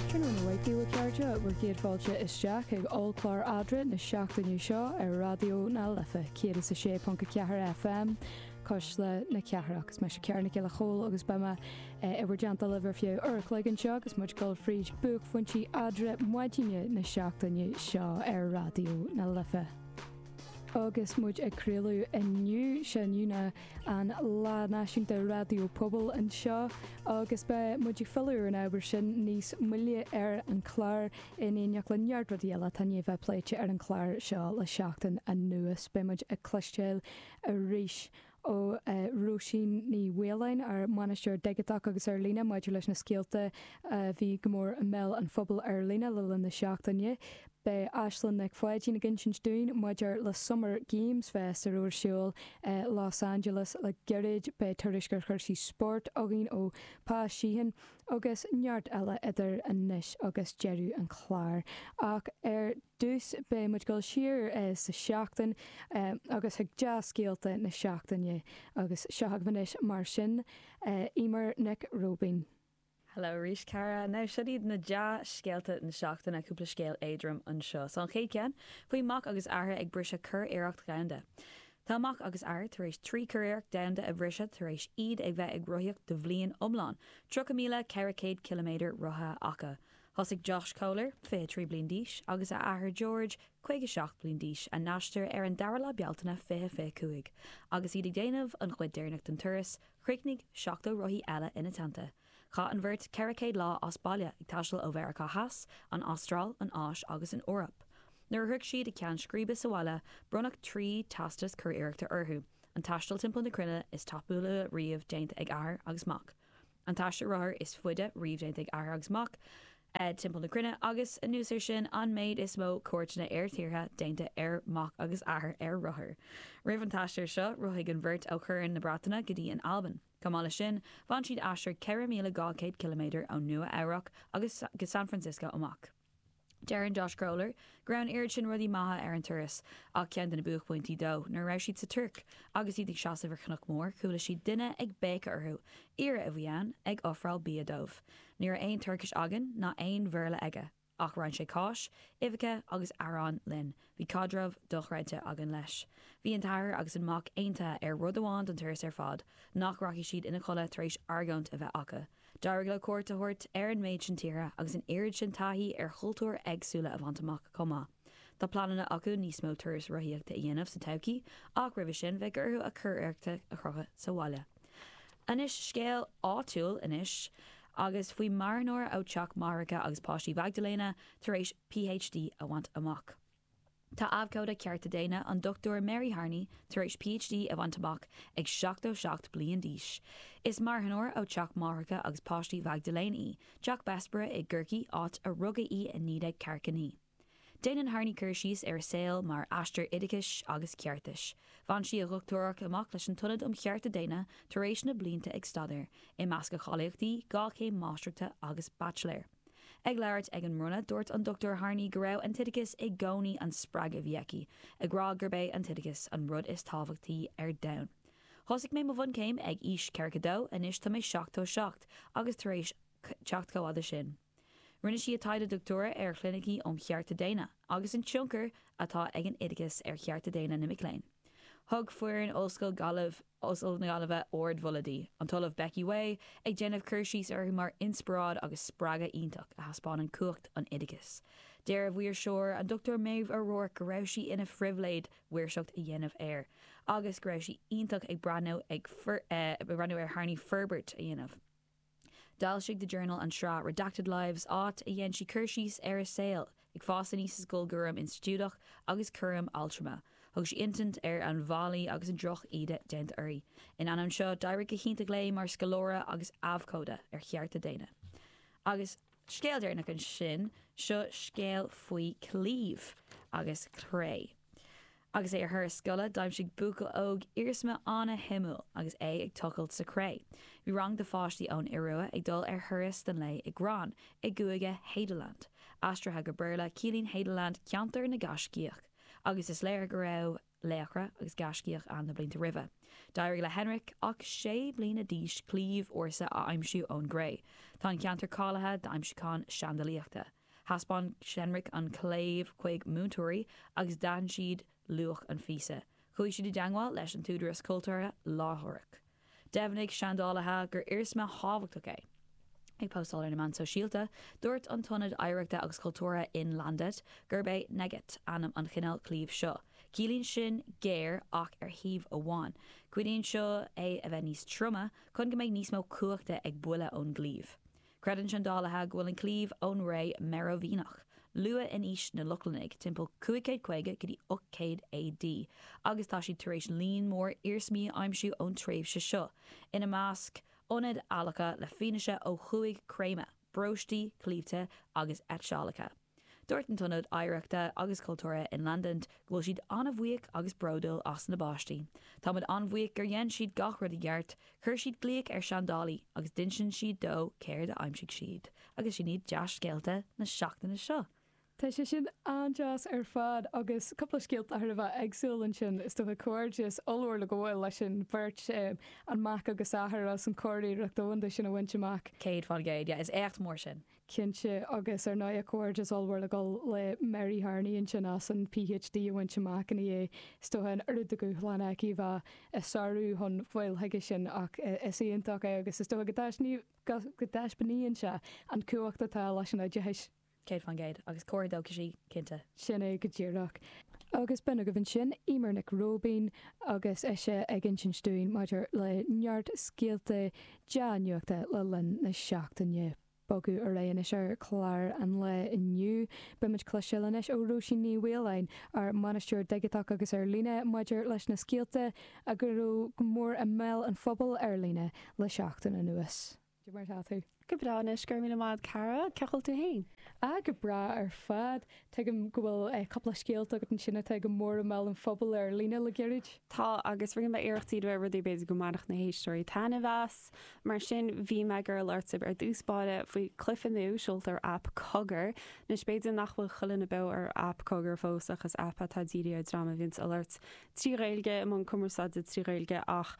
Tráthnóna maith agaibh a chairde bhur gcéad fáilte isteach ag ollchlár eadra na seachtaine seo ar Raidió na Life 106.4 FM cuisle na cathrach. Is mise Cara Nic Giolla Chomhaill agus beidh mé i bhur dteannta libh ar feadh uair an chloig anseo agus muid ag dul fríd buaicphointí eadra maidine na seachtaine seo ar Raidió na Life. Agus muid ag craoladh inniu, seo inniu ná. an Lá Náisiúnta Raidió Pobail anseo agus beidh muid ag filleadh ar an ábhar sin níos moille ar an chlár in éineacht le neart rudaí eile atá i ndiaidh bheith pléite ar an chlár seo le seachtain anuas. Beidh muid ag cloisteáil arís ó Róisín Ní Mhaoláin, ár mbainisteoir digiteach agus ar líne, maidir leis na scéalta a bhí go mór i mbéal an phobail ar líne le linn na seachtaine. Beidh Aislinn Nic Pháidín ag insint dúinn maidir le Summer Games Fest a raibh ar siúl i Los Angeles le gairid, beidh tuairisc ar chúrsaí spóirt againn ó Pa Sheehan agus neart eile idir anois agus deireadh an chláir. Ach ar dtús beidh muid ag dul siar sa tseachtain agus chuig dea-scéalta na seachtaine agus seo agaibh anois mar sin Eimear Nic Róibín. Hello arís, Cara. Now, seo iad na dea-scéalta na seachtaine, cúpla scéal éadrom anseo 's an chéad cheann, faoi mac agus athair ag briseadh curiarracht dhomhanda. Tá mac agus athair tar éis trí churiarracht domhanda a bhriseadh tar éis iad ag bheith ag rothaíocht do bhliain iomlán, 30,400 ciliméadar rothaithe acu. Thosaigh Josh Kohler, 23 bliain d'aois, agus a athair George, 57 bliain d'aois, a n-aistear ar an 2ú lá Bealtaine 2025, agus iad ag déanamh an chuid deireanach den turas, Chríochnaigh 70 rothaí eile ina teannta. Chaith an bheirt 400 lá as baile, ag taisteal ó Mheiriceá Theas, an Astráil, an Áis agus an Eoraip. Nuair a shroich siad a ceann scríbe sa bhaile, bronnadh trí teastas curiarrachta orthu, an taisteal timpeall na cruinne is tapúla riamh déanta ag athair agus mac, an t-aistear rothar is faide riamh déanta ag athair agus mac, timpeall na cruinne, agus anuas ar sin, an méid is mó cuairteanna ar thíortha déanta ar mac agus athair ar rothar. Roimh an t-aistear seo, rothaigh an bheirt ó Chorn na Breataine go dtí an Albain. Chomh maith leis sin, bhain siad aistear 4,200 ciliméadar ó Nua Eabhrac agus go San Francisco amach. Deireann Josh Kohler go raibh an oiread sin rudaí maithe ar an turas, ach ceann de na buaicphointí dó, nuair a raibh siad sa Tuirc, agus iad ag seasamh ar chnoc mór, chuala siad duine ag béiceadh orthu. Aoire a bhí ann, ag ofráil bia dóibh. Ní raibh aon Tuircis againn, ná aon Bhéarla aige, ach roinn sé cáis, uibheacha agus arán linn. Bhí caidreamh dochreidte againn leis. Bhí an t-athair agus an mac aontaithe ar rud amháin don turas ar fad, nach rachaidh siad ina chodladh tar éis argóint a bheith acu. D'éirigh leo cuairt a thabhairt ar an méid sin tíortha agus an oiread sin taithí ar chultúir éagsúla a bhaint amach chomh maith. Tá pleananna acu níos mó turais rothaíochta a dhéanamh sa todhchaí, ach roimhe sin beidh orthu a curiarrachta a chrochadh sa bhaile. Anois scéal áitiúil anois, faoi marthanóir ó teach máithreacha agus páistí Mhaigdiléana tar éis PhD a bhaint amach. Tá abhcóide cearta daonna, an Dr Mary Harney, tar éis PhD a bhaint amach ag 77 bliain d'aois. Is marthanóir ó teach máithreacha agus páistí Mhaigdiléana í, Teach Bessborough i gCorcaigh, áit a rugadh í i 1949. Déanann Harney cur síos ar a saol mar aistear oideachais agus ceartais. Bhain sí a dhochtúireacht amach leis an tIonad um Chearta Daonna tar éis na blianta ag staidéar, i measc a cháilíochtaí, dhá chéim máistreachta agus baitsiléir. Ag labhairt ag an mbronnadh, dúirt an Dr Harney go raibh an t-oideachas i gcónaí an spreagadh a bhí aici, ag rá gurb é an t-oideachas an rud is tábhachtaí ar domhan. Thosaigh mé mo bhunchéim ag aois 42, anois tá mé 77 agus tar éis teacht chomh fhada sin. Rinne sí a taighde doctúra ar chlinicí um chearta daonna agus an tionchar atá ag an oideachas ar chearta daonna na mic léinn. Thug foireann Ollscoil na Gaillimhe ardmholadh di, an tOllamh Becky Whay ag déanamh cur síos uirthi mar inspioráid agus spreagadh iontach a thaispeánann cumhacht an oideachais. Deir a mhaoirseoir, an Dr Maeve O'Rourke go raibh sí ina phribhléid mhaoirseacht a dhéanamh air agus go raibh sí iontach ag breathnú ar Harney forbairt a dhéanamh. D'fhoilsigh The Journal an tsraith Redacted Lives, áit a dhein sí cur síos ar a saol ag fás aníos i scoil cúram institiúideach agus cúram altrama. Thug sí insint ar an bhfaillí agus an droch-íde déanta uirthi. In ainneoin seo, d'éirigh go hiontach léi mar scoláire agus abhcóide ar chearta daonna. Agus. scéal deireanach ansin, seo scéal faoi claíomh agus cré. Agus é ar thuras scoile, d'aimsigh buachaill óg iarsma an-shuimiúil agus é ag tochailt sa chré. Bhí rang de pháistí ón Iorua ag dul ar thuras don lae i Gran i gcúige Hadeland. Aistrithe go Béarla, ciallaíonn Hadeland 'ceantar na gaiscíoch', agus is léir go raibh laochra agus gaiscíoch ann na blianta roimhe. D'éirigh le Henrik, ach sé bliana d'aois, claíomh ársa a aimsiú ón gcré. Tá an ceantar cáilithe d'aimsiúcháin seandalaíochta. Thaispeáin Henrik an claíomh chuig múinteoirí agus d'aithin siad luach an phíosa. Chuaigh siad i dteagmháil leis an t-údaras cultúrtha láithreach. Dheimhnigh seandálaithe gur iarsma thábhachtach é. Ag postáil ar na meáin shóisialta, dúirt an t-ionad oidhreachta agus cultúrtha Innlandet gurb é enegget ainm an chineál claímh seo. Ciallaíonn sin 'géar ach ar thaobh amháin'. Cuidíonn seo é a bheith níos troime chun go mbeidh níos mó cumhachta ag buille ón gclaíomh. Creideann seandálaithe go bhfuil an claíomh ón ré Merovingiach, luath in aois na Lochlannaigh, timpeall 550 go dtí 800 AD, agus tá siad tar éis líon mór iarsmaí a aimsiú ón tréimhse seo, ina measc ionaid adhlactha le fianaise ó chúig chréamadh, bróistí, claímhte agus eitseálacha. Dúirt an tIonad Oidhreachta agus Cultúrtha in London go bhfuil siad an-bhuíoch agus bródúil as na bpáistí. Táimid an-bhuíoch gur dhein siad gach rud i gceart, chuir siad glaoch ar seandálaí agus d'insint siad dó céard a aimsigh siad. Agus sin iad dea-scéalta na seachtaine seo! Tá sé sin an-deas ar fad, agus cúpla scéalta thar a bheith éagsúil ansin, is dócha. Comhghairdeas ollmhór le gabháil leis an bheirt, an mac agus athair, as an churiarracht dhomhanda sin a bhaint amach. Céad faoin gcéad, yeah, is éacht mór sin. cinnte, agus ar ndóigh a comhghairdeas ollmhór le dul le Mary Harney ansin as an PhD a bhaint amach i ndiaidh, is dócha, an oiread de dhúshlán aici a bheith á sárú chun fáil chuige sin ach is iontach é agus is dócha go dtaispeánaíonn sé an cumhacht atá leis an oideachas. Céad faoin gcéad. Agus ábhar dóchais í, cinnte. Sin é go díreach. Agus b'in agaibh ansin Eimear Nic Róibín agus ise ag insint dúinn maidir le neart scéalta dea-nuachta le linn na seachtaine. Bogadh ar aghaidh anois ar chlár an lae inniu. Beimid cloisteáil anois ó Róisín Ní Mhaoláin, ár mbainisteoir digiteach agus ar líne, maidir leis na scéalta a go raibh go mór i mbéal an phobail ar líne le seachtain anuas. Cad é mar tá tú? Go breá anois, go raibh míle maith agat cara, cén chaoi a bhfuil tú fhéin? Ah, go breá ar fad. Tuigim go bhfuil cúpla scéalta agat ansin atá go mór i mbéal an phobail ar líne le gairid. Tá, agus rinne mé iarracht díriú ar rudaí a b'fhéidir go mbainfeadh na héisteoirí taitneamh as. Mar sin, bhí mé ag iarraidh labhairt ar dtús báire faoi cluife nua seolta ar aip Cogar. Anois, b'fhéidir nach bhfuil chuile dhuine beo ar aip Cogar fós, ach is aip atá dírithe ar dream a bhíonns ag labhairt trí Ghaeilge, i mbun cumarsáide trí Ghaeilge, ach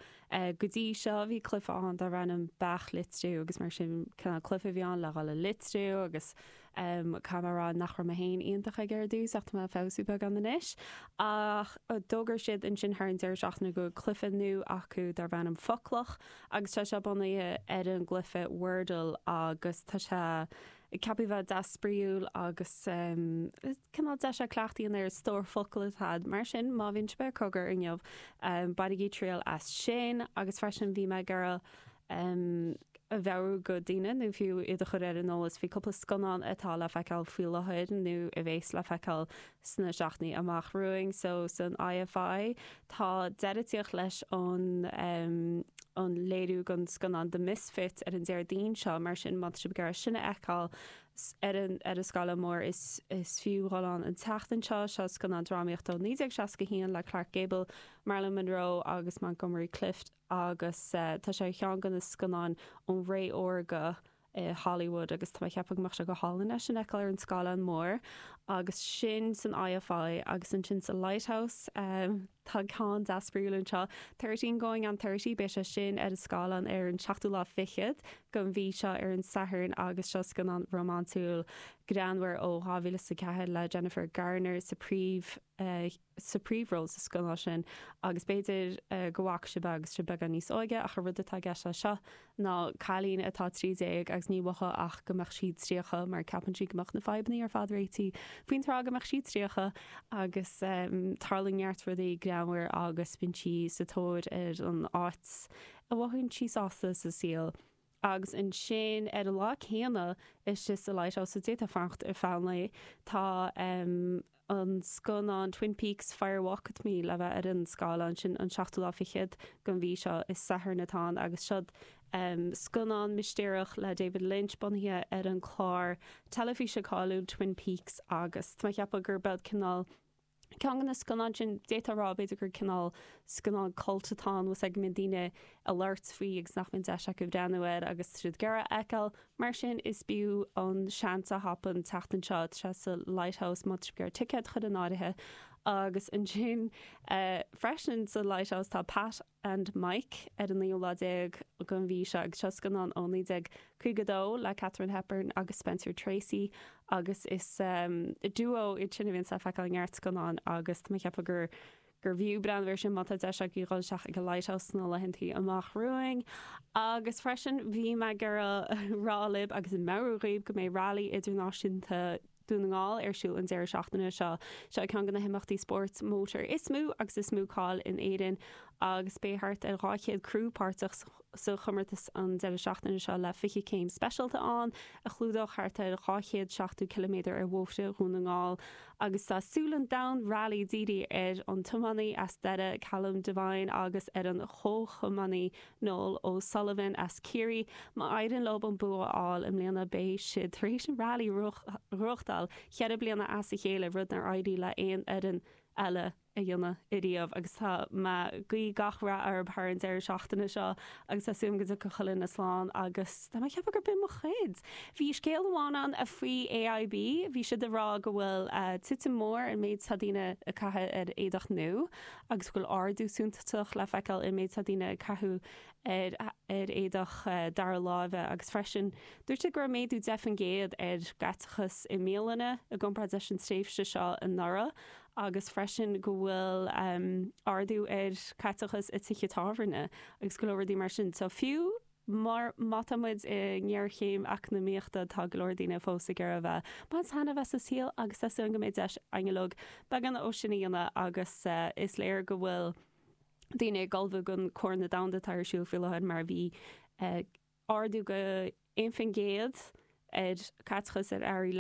go dtí seo, bhí cluife ann darbh ainm Beach Litriú, agus mar sin, cineál cluife a bhí ann le dhul ag litriú, agus. Caithfidh mé a rá nach raibh mé féin iontach aige ar dtús, ach tá mé ag feabhsú beagán anois. Ach d'fhógair siad ansin thar an deireadh seachtaine go bhfuil cluiche nua acu darb ainm Foclach, agus tá sé bunaithe ar an gcluiche Wordle, agus tá sé ceaptha a bheith deas spraíúil agus cineál deis é cleachtadh a dhéanamh ar stór focal atá agat. Mar sin, má bhíonn sibh ar Cogar inniu, bainigí triail as sin. Agus freisin, bhí mé ag iarraidh. um a mheabhrú go daoine, nó fiú iad a chur ar an eolas faoi cúpla scannán atá le feiceáil faoi láthair nó a bheas le feiceáil sna seachtainí amach romhainn. So san IFI, tá deireadh ag tíocht leis an um an léiriú den scannán The Misfits ar an Déardaoin seo, mar sin má tá sibh ag iarraidh sin a fheiceáil ar an ar an scáileán mór, is is fiú dhul ann an tseachtain seo. Seo scannán drámaíochta ó 1961 le Clark Gable, Marilyn Monroe agus Montgomery Clift. agus tá sé ar cheann de na scannáin ón ré órga i Hollywood agus tá mé ag ceapadh go mbeadh sé go hálainn é sin a fheiceáil ar an scáileán mór agus sin san IFI agus ansin sa Lighthouse tá ceann deas spraíúil anseo Thirteen Going on Thirty beidh sé sin ar an scáileán ar an seachtú lá fichead den mhí seo ar an Satharn agus seo scannán rómánsúil greannmhar ó 2004 le Jennifer Garner sa phríomh sa príomhról sa scannán sin agus b'fhéidir go bhfaca sibh é agus sibh beagán níos óige ach an rud atá i gceist leis seo ná cailín atá trí déag agus níor mhaith léi ach go mbeadh sí tríocha mar ceapann sí go mbeadh na fadhbannaí ar fad réití faoin tráth go mbeadh sí tríocha agus tarlaíonn neart rudaí greannmhar agus bíonn sí sa tóir ar an áit a mhothaíonn sí sásta sa saol. Agus ansin ar an lá céanna istigh sa Lighthouse so d'fhéadfá fanacht ar feadh an lae, tá an scannán Twin Peaks, Fire Walk With Me le bheith ar an scáileán. Sin an seachtú lá fichead den mhí seo, is Satharn atá ann, agus seo'd scannán mistéireach le David Lynch bunaithe ar an chlár teilifíse cáiliúil Twin Peaks agus tá mé ag ceapadh gur beag cineál Ceann de na scannáin sin, d'fhéadfá a rá, b'fhéidir, gur cineál scannán cult atá ann, as a mbíonn daoine ag labhairt faoi agus nach mbíonn deis acu breathnú air agus iad dhá fheiceáil. Mar sin, b'fhiú an seans a thapú an tseachtain seo sa Lighthouse más féidir ticéad a chur in áirithe agus ansin freisin sa Lighthouse tá Pat and Mike ar an naoú lá déag den mhí seo agus seo scannán ó 1952 le Katharine Hepburn agus Spencer Tracy agus is duo iad sin a bhíonns le feiceáil i neart scannán agus tá mé ag ceapadh gurbh fhiú breathnú ar sin má tá deis agaibh dhul isteach ag an Lighthouse sna laethanta amach romhainn agus freisin bhí mé ag rá libh agus ag meabhrú dhaoibh go mbeidh Rally Idirnáisiúnta Dún na nGall ar siúl an deireadh seachtaine seo. Seo é ceann de na himeachtaí spóirt mótair is mó agus is mó cáil in Éirinn agus beidh thart ar 200 criú páirteach sa chomórtas an deireadh seachtaine seo le 20 céim speisialta ann a chlúdóidh thart ar 270 km ar bhóithre Dhún na nGall agus tá súile an domhain rally dírithe ar an tiománaí as Doire Callum Devine agus ar an chomhthiománaí Noel O'Sullivan as Ciarraí, má éirionn leo an bua a fháil i mbliana beidh siad tar éis an rally a bhuachtáil cheithre bliana as a chéile, rud nár éirigh le aon fhoireann eile a dhéanamh ariamh agus tá mé ag guí gach rath orthu thar an deireadh seachtaine seo agus tá súil agam go dtiocfaidh chuile duine slán agus tá mé ag ceapadh gurb in mo chuid. Bhí scéal amháin ann faoi AIB, bhí siad ag rá go bhfuil titim mór sa méid atá daoine ag caitheamh ar éadaí nua. agus go bhfuil ardú suntasach le feiceáil i méid atá daoine ag caitheamh ar éadaí dara láimhe agus freisin dúirt sé go raibh méadú 10 faoin gcéad ar chaiteachas i mbialanna i gcomparáid leis an tréimhse seo anuraidh agus freisin go bhfuil ardú ar chaiteachas i tithe tábhairne agus go leor rudaí mar sin. So fiú. mar má tá muid i ngéarchéim eacnamaíochta tá go leor daoine fós ag iarraidh a bheith ag baint taitneamh as an saol agus tá súil agam go mbeidh deis againn uilig beagán de sin a dhéanamh agus is léir go bhfuil daoine ag ullmhú don Chorn Domhanda atá ar siúl faoi láthair mar bhí ardú de 1% ar chaiteachas ar earraí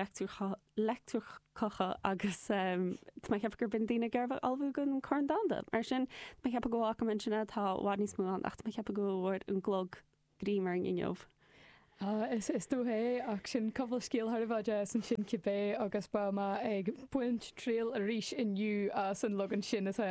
leictreacha agus tá mé ag ceapadh go mbíonn daoine ag iarraidh a bheith ag ullmhú don Chorn Domhanda. Mar sin, tá mé ag ceapadh gurb in é, tá i bhfad níos mó ann ach tá mé ag ceapadh go bhfuair an clog greim orainn inniu. Is dócha é, ach sin gabháil scéal thar barr é, is ansin cibé agus beidh mé ag baint triail arís inniu as an leagan sin atá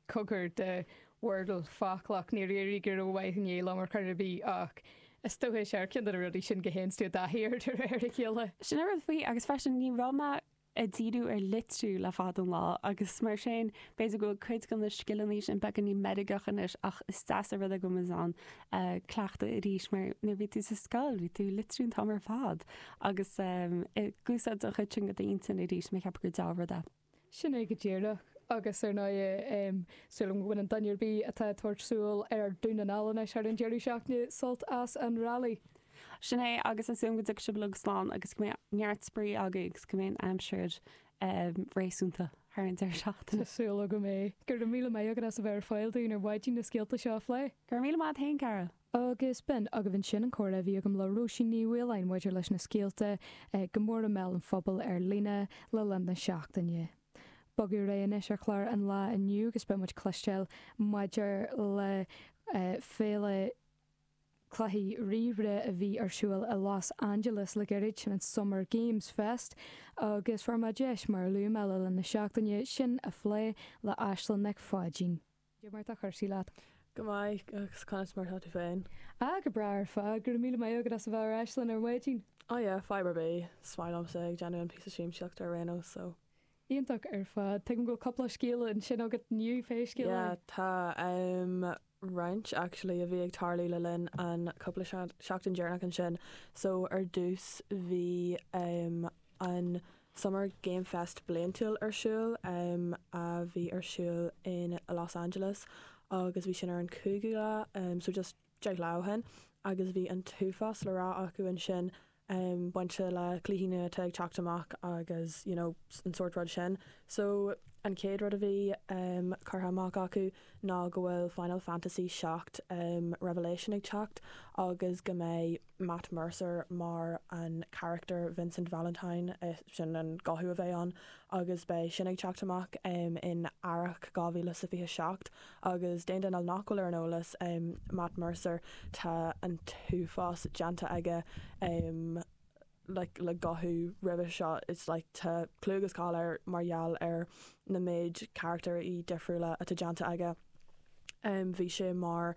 curtha de Wordle, foclach, níor éirigh go ró-mhaith inné liom ar chor ar bith ach, Is dócha is é ar cheann de na rudaí sin go bhfaigheann tú i dtaithí air de réir a chéile. Sin an rud faoi, agus freisin ní raibh mé ag díriú ar litriú le fada an lá agus mar sin b'fhéidir go bhfuil cuid de na scileanna sin beagáinín meirgeach anois ach is deas an rud é go bhfuil mé in ann cleachtadh arís mar nuair a bhí tú sa scoil bhí tú ag litriú an t-am ar fad agus ag úsáid an chuid sin de d'intinn arís, ceapaim gur dea-rud é. Sin é go díreach. Agus ar ndóigh, tá súil agam go mbainfidh duine ar bith atá ag tabhairt siúil ar Dhún na nGall anois thar an deireadh seachtaine sult as an rally. Sin é, agus tá súil agam go dtiocfaidh sibh uilig slán agus go mbeidh neart spraoi agaibh agus go mbeidh an aimsir réasúnta thar an deireadh seachtaine. Tá súil agam é. Go raibh míle maith agat as a bheith ar fáil dúinn ar maidin na scéalta seo a phlé. Go raibh míle maith agat fhéin, a chara. Agus b'in agaibh ansin an comhrá a bhí agam le Róisín Ní Mhaoláin maidir leis na scéalta is mó i mBéal an Phobail ar líne le linn na seachtaine. Ag bogadh ar aghaidh anois ar chlár an lae inniu agus beidh muid ag cloisteáil maidir le Féile Cluichí Ríomhaire a bhí ar siúl i Los Angeles le gairid, an Summer Games Fest, agus fuair mé deis, mar a luaigh mé le linn na seachtaine, sin a phlé le Aislinn Nic Pháidín. Cad é mar atá cúrsaí leat. Go maith, agus conas mar atá tú féin? Ah, go breá ar fad, go raibh míle maith agat as a bheith ar ais linn ar maidin. Oh yeah, fadhb ar bith. Is maith liomsa a bheith ag déanamh an píosa siamsaíochta ar aon nós, so. Iontach ar fad. Tuigim go bhfuil cúpla scéal ansin agat inniu, pé scéal é. Yeah, tá, em, roinnt, actually, a bhí ag tarlú le linn an chúpla seachtain deireanach ansin. So, ar dtús, bhí, em, an. Summer Game Fest bliantúil ar siúl, a bhí ar siúl in Los Angeles agus bhí sin ar an 5ú lá, so just deich lá ó shin agus bhí an t-uafás le rá acu ansin bainte le cluichí nua atá ag teacht amach agus you know an sórt rud sin. So an chéad rud a bhí curtha amach acu ná go bhfuil Final Fantasy 7 Revelation ag teacht agus go mbeidh. Matt Mercer mar an carachtar Vincent Valentine, sin an guthú a bheidh ann agus beidh sin ag teacht amach in earrach 2027. Agus d'aon duine nach bhfuil ar an eolas, Matt Mercer, tá an t-uafás déanta aige le guthú roimhe seo, tá clú agus cáil air mar gheall ar na méid carachtair difriúla atá déanta aige. Bhí sé mar.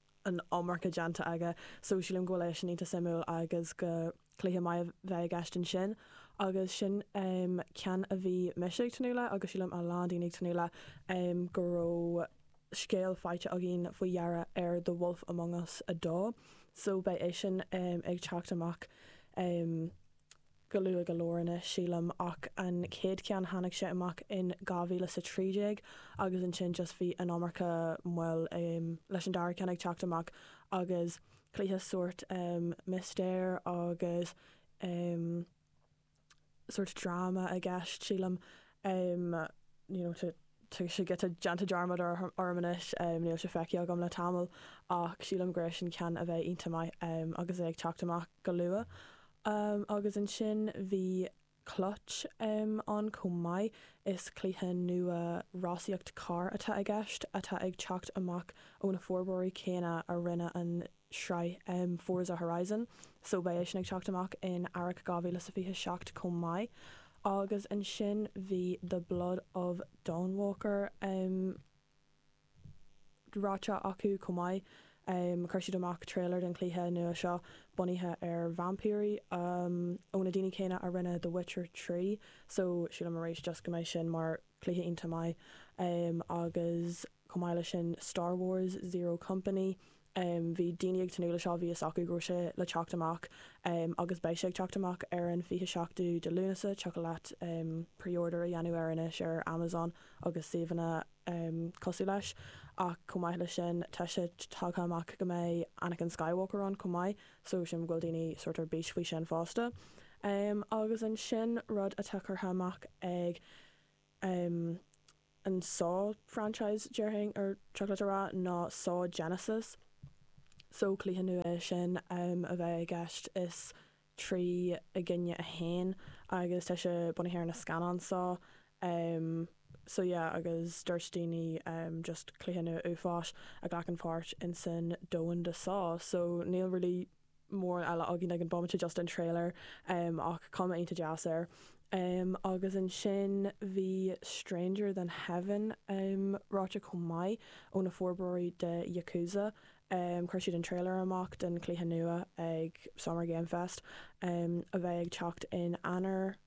an iomarca déanta aige so sílim go bhfuil é sin iontach suimiúil agus go cluiche maith a bheidh i gceist ansin agus sin ceann a bhí mise ag tnúth le agus sílim a lán daoine ag tnúth le go raibh scéal faighte againn faoi dheireadh ar The Wolf Among Us 2 so beidh eisean ag teacht amach go luath go leor anois, sílim, ach an chéad cheann tháinig sé amach in 2013 agus ansin just bhí an iomarca moill leis an dara ceann ag teacht amach agus cluiche sórt mistéir agus sórt dráma i gceist, sílim. em níl sé tá sé giota déanta dearmad air agam anois em níl sé feicthe agam le tamall ach sílim go raibh sin ceann a bheidh iontach maith em agus é ag teacht amach go luath em agus ansin bhí Clutch em ann chomh maith is cluiche nua rásaíocht carr atá i gceist atá ag teacht amach ó na forbróirí céanna a rinne an sraith Forza Horizon so beidh eisean ag teacht amach in earrach 2027 chomh maith, agus ansin bhí The Blood of Dawnwalker ráite acu chomh maith. Chuir siad amach trailer den chluiche nua seo, bunaithe ar vaimpírí, ó na daoine céanna a rinne The Witcher 3, so sílim arís just go mbeidh sin mar chluiche iontach maith. Agus chomh maith leis sin Star Wars, Zero Company, em bhí daoine ag tnúth le seo bhí fhios acu go raibh sé le teacht amach em agus beidh sé ag teacht amach ar an 27ú de Lúnasa tiocfadh leat em preorder a dhéanamh air anois ar Amazon agus suíomhanna em cosúil leis ach chomh maith leis sin tá sé tagtha amach go mbeidh Anakin Skywalker ann chomh maith so sílim go bhfuil daoine sórt ar bís faoi sin fosta em agus ansin rud atá curtha amach ag em an saw franchise déarfainn ar chóir dom a rá ná saw genesis so cluiche nua é sin em a bheith i gceist is trí i gcoinne a haon agus tá sé bunaithe ar na scannáin saw em so yeah agus dúirt daoine em just cluiche nua uafáis a ghlacann páirt insan domhan de saw so níl really mórán eile againn ag an bhomaite, just an trailer, ach cuma iontach deas air. Agus ansin bhí Stranger Than Heaven fógartha chomh maith, ó na forbróirí de Yakuza. Chuir siad an trailer amach don chluiche nua ag Summer Game Fest, a bheidh ag teacht in Eanáir.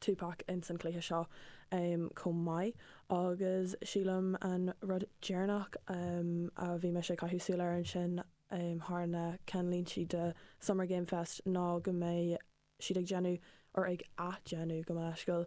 Tupac ins an cluiche seo chomh maith agus sílim an rud deireanach a bhí mise ag caitheamh súile air ansin thar na ceannlíntí de Summer Game Fest ná go mbeidh siad ag déanamh, or ag ath-déanamh, gabh mo leithscéal,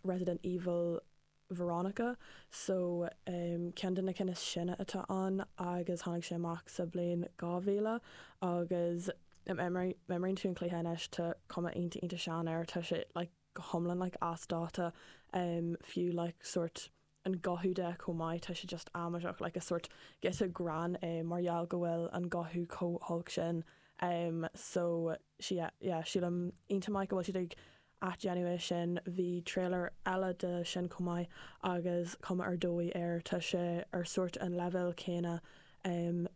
Resident Evil. Veronica, So, em, ceann de na cinn is sine atá ann agus tháinig sé amach sa bhliain 2000 agus em, em, má imríonn, má imríonn tú an cluiche anois tá cuma iontach, iontach sean air, tá sé like go hiomlán like as dáta, em, fiú like sórt an guthú de chomh maith, tá sé just amaideach like is sórt giota gránna é mar gheall go bhfuil an guthú chomh holc sin, em, so, sea, yeah, sílim go bhfuil sé iontach maith go bhfuil siad ag, athdhéanamh é sin. Bhí tréilear eile de sin chomh maith agus cuma ar dóigh air. Tá sé ar sórt an leibhéal céanna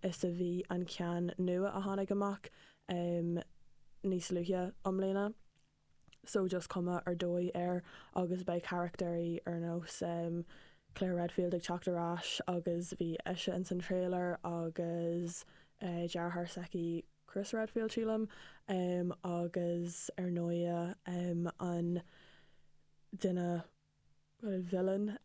is a bhí an ceann nua a tháinig amach níos luaithe i mbliana. So just cuma ar dóigh air agus beidh carachtéirí ar nós Claire Redfield ag teacht ar ais agus bhí ise ins an tréilear agus deartháir s'aici, Chris Redfield, sílim, agus ar ndóighe an duine, bhuel, villain,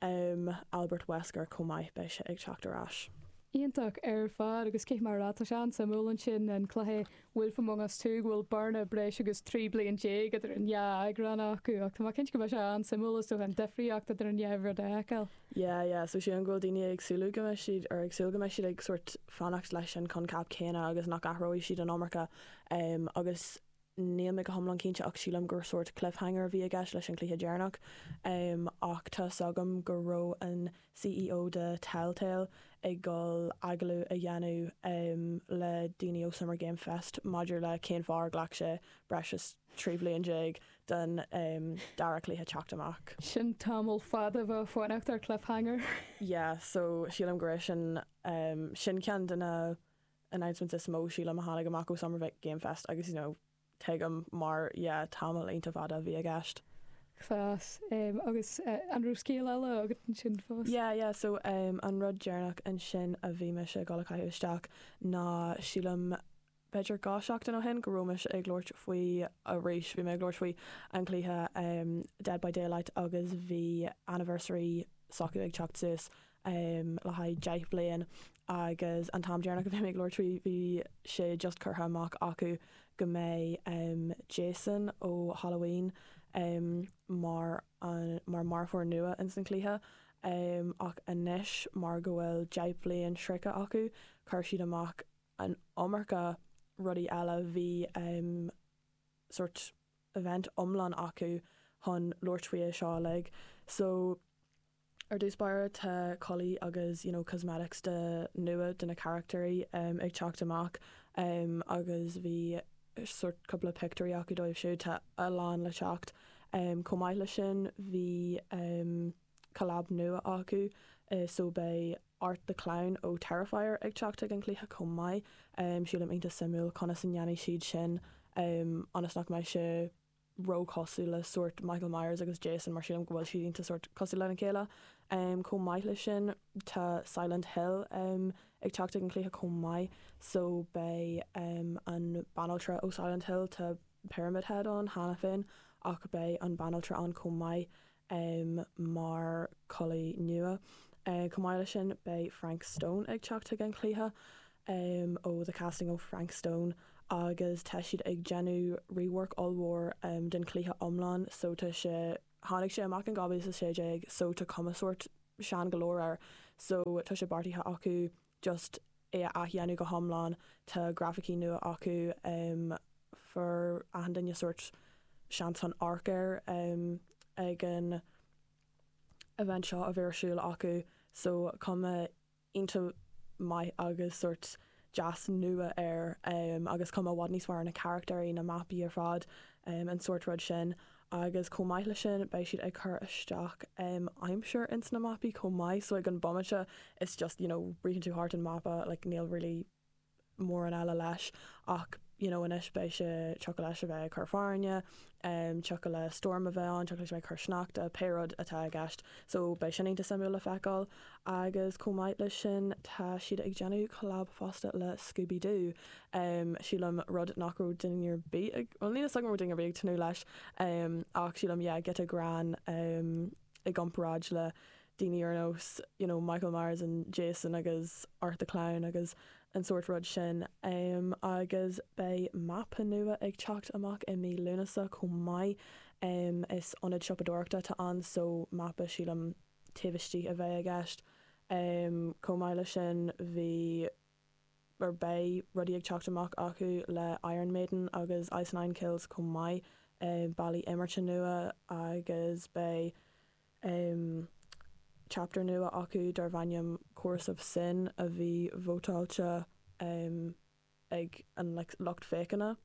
Albert Wesker chomh maith, beidh sé ag teacht ar ais. Iontach ar fad, agus cé, mar a deir tú, tá sé an-suimiúil ansin an cluiche Wolf Among Us 2 go bhfuil bearna breis agus 13 bliain idir an dhá eagrán acu, ach tá mé cinnte go mbeidh sé an-suimiúil is dócha an difríocht idir an dhá rud a fheiceáil. Yeah, yeah, so sílim go bhfuil daoine ag súil go mbeidh siad, or ag súil go mbeidh siad ag sórt fanacht leis an choincheap céanna agus nach athróidh siad an iomarca ehm agus níl mé go hiomlán cinnte ach sílim gur sórt cliffhanger a bhí i gceist leis an chluiche deireanach ehm ach tá 's agam go raibh an CEO de Telltale ag dul agallamh a dhéanamh ehm le daoine ó Summer Game Fest maidir le cén fáth ar ghlac sé breis is trí bhliain déag den dara cluiche teacht amach. Sin tamall fada a bheith ag fanacht ar cliffhanger. Yeah, so sílim go raibh sin, sin ceann de na announcements is mó, sílim, a tháinig amach ó Summer Game Fest agus, you know, tuigim, mar, yeah, tamall iontach fada a bhí i gceist. Yes, agus an raibh scéal eile agat ansin fós? Yeah, yeah, so an rud deireanach ansin a bhí mise ag dul a chaitheamh isteach ná, sílim, b'fhéidir dhá sheachtain ó shin, go raibh mise ag labhairt faoi arís, bhí mé ag labhairt faoi an cluiche Dead by Daylight agus bhí anniversary s'acu ag teacht suas le haghaidh deich bliain agus an t-am deireanach a bhí mé ag labhairt faoi, bhí sé just curtha amach acu go mbeidh Jason ó Halloween mar an, mar mharfóir nua ins an cluiche ach anois mar go bhfuil deich bliain sroichte acu, chuir siad amach an iomarca rudaí eile, bhí sórt event iomlán acu chun labhairt faoi seo uilig. So, ar dtús báire, tá culaith agus you know cosmetics de nua de na carachtair ag teacht amach agus bhí sórt cúpla pictiúirí acu dóibh siúd, tá a lán le teacht. Chomh maith leis sin, bhí collab nua acu, so beidh. Art the Clown ó Terrifier ag teacht chuig an chluiche chomh maith. Sílim iontach suimiúil conas a ndéanfaidh siad sin ionas nach mbeidh sé ró-chosúil le sórt Michael Myers agus Jason mar sílim go bhfuil siad iontach sórt cosúil lena chéile. Chomh maith leis sin tá Silent Hill ag teacht chuig an chluiche chomh maith so beidh an banaltra ó Silent Hill, tá Pyramid Head ann cheana féin ach beidh an banaltra ann chomh maith. um mar culaith nua. um Chomh maith leis sin, beidh Frank Stone ag teacht chuig an chluiche um ó The Casting of Frank Stone agus tá siad ag déanamh rework ollmhór um den chluiche iomlán so tá sé tháinig sé amach in 2016 so tá cuma sórt sean go leor air so tá sé beartaithe acu just é a athdhéanamh go hiomlán, tá grafaicí nua acu, fuair achan duine sórt seans chun amharc air ag an event seo a bhí ar siúl acu so cuma iontach maith agus sórt deas nua air agus cuma i bhfad níos fearr ar na carachtair, na mapaí ar fad, an sórt rud sin. Agus chomh maith leis sin, beidh siad ag cur isteach um aimsir ins na mapaí chomh maith, so ag an bomaite it's just, you know, ritheann tú thart an mapa, like níl really mórán eile leis ach, you know, anois beidh sé, tiocfadh leis a bheith ag cur fearthainne, em, tiocfadh le stoirm a bheith ann, tiocfadh leis a bheith ag cur sneachta, pé rud atá i gceist. So beidh sin iontach suimiúil le feiceáil. Agus chomh maith leis sin, tá siad ag déanamh collab fosta le Scooby Doo, sílim, rud nach raibh duine ar bith ag, bhuel, níl 'fhios agam an raibh duine ar bith ag tnúth leis, ach sílim, yeah, giota greann i gcomparáid le daoine ar nós, you know, Michael Myers and Jason agus Art the Clown agus an sórt rud sin. Agus beidh mapa nua ag teacht amach i mí Lúnasa chomh maith, is ionad siopadóireachta atá ann, so mapa, sílim, taobh istigh a bheidh i gceist. Chomh maith leis sin, bhí, or beidh, rudaí ag teacht amach acu le Iron Maiden agus Ice Nine Kills chomh maith, bealaí imeartha nua agus beidh chapter nua acu darb ainm Chorus of Sin a bhí vótáilte ag an lucht féachana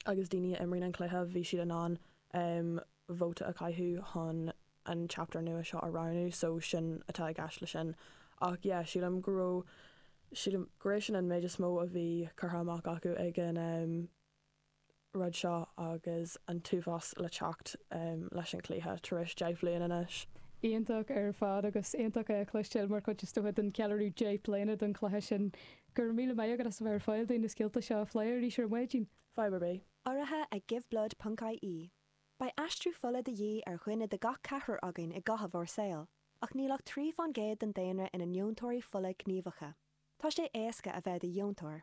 agus daoine a imríonn an cluiche, bhí siad in ann vóta a chaitheamh chun an chapter nua seo a roghnú so sin atá i gceist le sin ach yeah sílim go raibh, sílim, gur é sin an méid is mó a bhí curtha amach acu ag an. rud seo agus an t-uafás le teacht leis an gcluiche tar éis deich bhliain anois. Iontach ar fad agus iontach é a chloistéail mar chuid is dócha den ceiliúradh deich bliana don chluiche sin. Go raibh míle maith agat as a bheith ar fáil dúinn na scéalta seo a phlé arís ar maidin. Fadhb ar bith. Urraithe ag Giveblood ponc ie Beidh aistriú fola de dhíth ar dhuine de gach ceathrar againn i gcaitheamh ár saol, ach níl ach trí faoin gcéad den daonra ina ndeontóirí fola gníomhacha. Tá sé éasca a bheith i do dheontóir.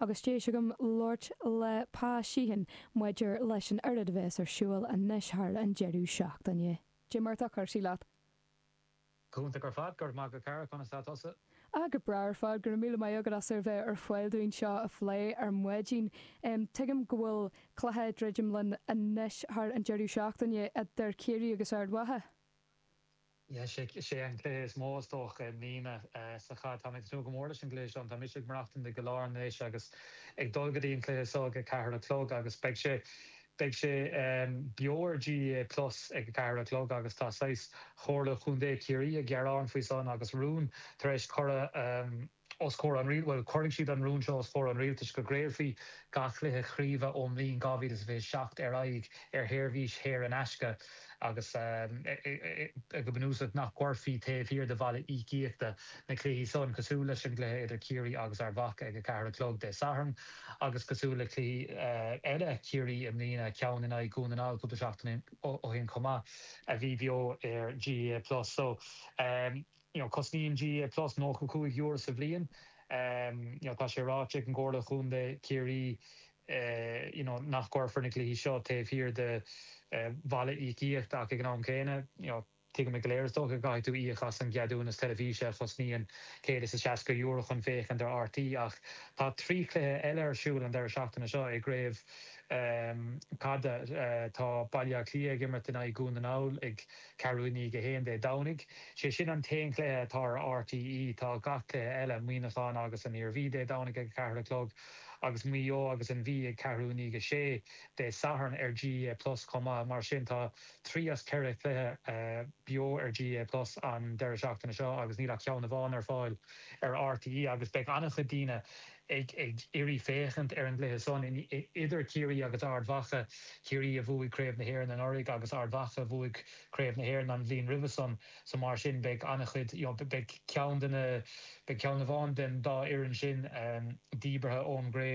Agus deis agam labhairt le Pa Sheehan maidir leis an oiread a bheas ar siúl anois thar an deireadh seachtaine. Cad é mar atá cúrsaí leat? Go hiontach ar fad. Go raibh maith agat, a chara. Conas tá tusa? Ah, go breá ar fad. Go raibh míle maith agat as a bheith ar fáil dúinn seo a phlé ar maidin. Tuigim go bhfuil cluiche ag druidim linn anois thar an deireadh seachtaine idir Ciarraí agus Ard Mhacha. Is é an cluiche is mó, is dócha, i mbliana sa chaid. Táim ag tnúth go mór leis an gcluiche seo. Tá mise ag maireachtaint i gCill Airne anois agus ag dul go dtí an cluiche so ag a ceathair a chlog agus beidh sé beidh sé beo ar GAA plus ag a ceathair a chlog agus tá saghas Chomhairle Chontae Chiarraí ag gearán faoi san agus rún tar éis cur a os comhair an rialtais, bhuel, cuirfidh siad an rún seo os comhair an rialtais, go gcraolfaí gach cluiche craoibhe ón mbliain 2027 ar aghaidh ar sheirbhís shaor in aisce agus go bunúsach nach gcuirfí taobh thiar de bhalla íocaíochta na cluichí san, cosúil leis an gcluiche idir Ciarraí agus Ard Mhacha ag a ceathair a chlog Dé Sathairn agus cosúil le cluichí eile Chiarraí i mbliana, ceann in aghaidh Dhún na nGall cúpla seachtain ó shin chomh maith, a bhí beo ar GAA plus. So. you know Cosnaíonn GAA Plus nócha cúig euro sa bhliain you know tá sé ráite ag an gComhairle Chontae Chiarraí you know nach gcuirfear na cluichí seo taobh thiar de bhalla íocaíochta ach ag an am céanna you know tuigimid go léir is dócha go gcaithfidh tú íoc as an gceadúnas teilifíse a chosnaíonn céad is a seasca euro chun féachaint ar RTÉ ach tá trí chluiche eile ar siúl an deireadh seachtaine seo i gcraobh caide tá Baile Átha Cliath ag imirt in aghaidh Dhún na nGall ag ceathrú i ndiaidh a haon Dé Domhnaigh, sé sin an t-aon chluiche atá ar RTÉ. Tá gach cluiche eile, Muineachán agus an Iarmhí Dé Domhnaigh ag a ceathair a chlog, agus Maigh Eo agus an Mhí ag ceathrú i ndiaidh a sé Dé Sathairn ar GAA Plus chomh maith. Mar sin tá trí as ceithre chluiche beo ar GAA Plus an deireadh seachtaine seo agus níl ach ceann amháin ar fáil ar RTÉ agus beidh an-chuid daoine ag iarraidh féachaint ar an gcluiche san idir Ciarraí agus Ard Mhacha, Ciarraí a bhuaigh Craobh na hÉireann anuraidh agus Ard Mhacha a bhuaigh Craobh na hÉireann an bhliain roimhe san, so mar sin beidh an-chuid, you know beidh ceann de na, beidh ceann amháin den dá fhoireann sin díbeartha ón gCraobh.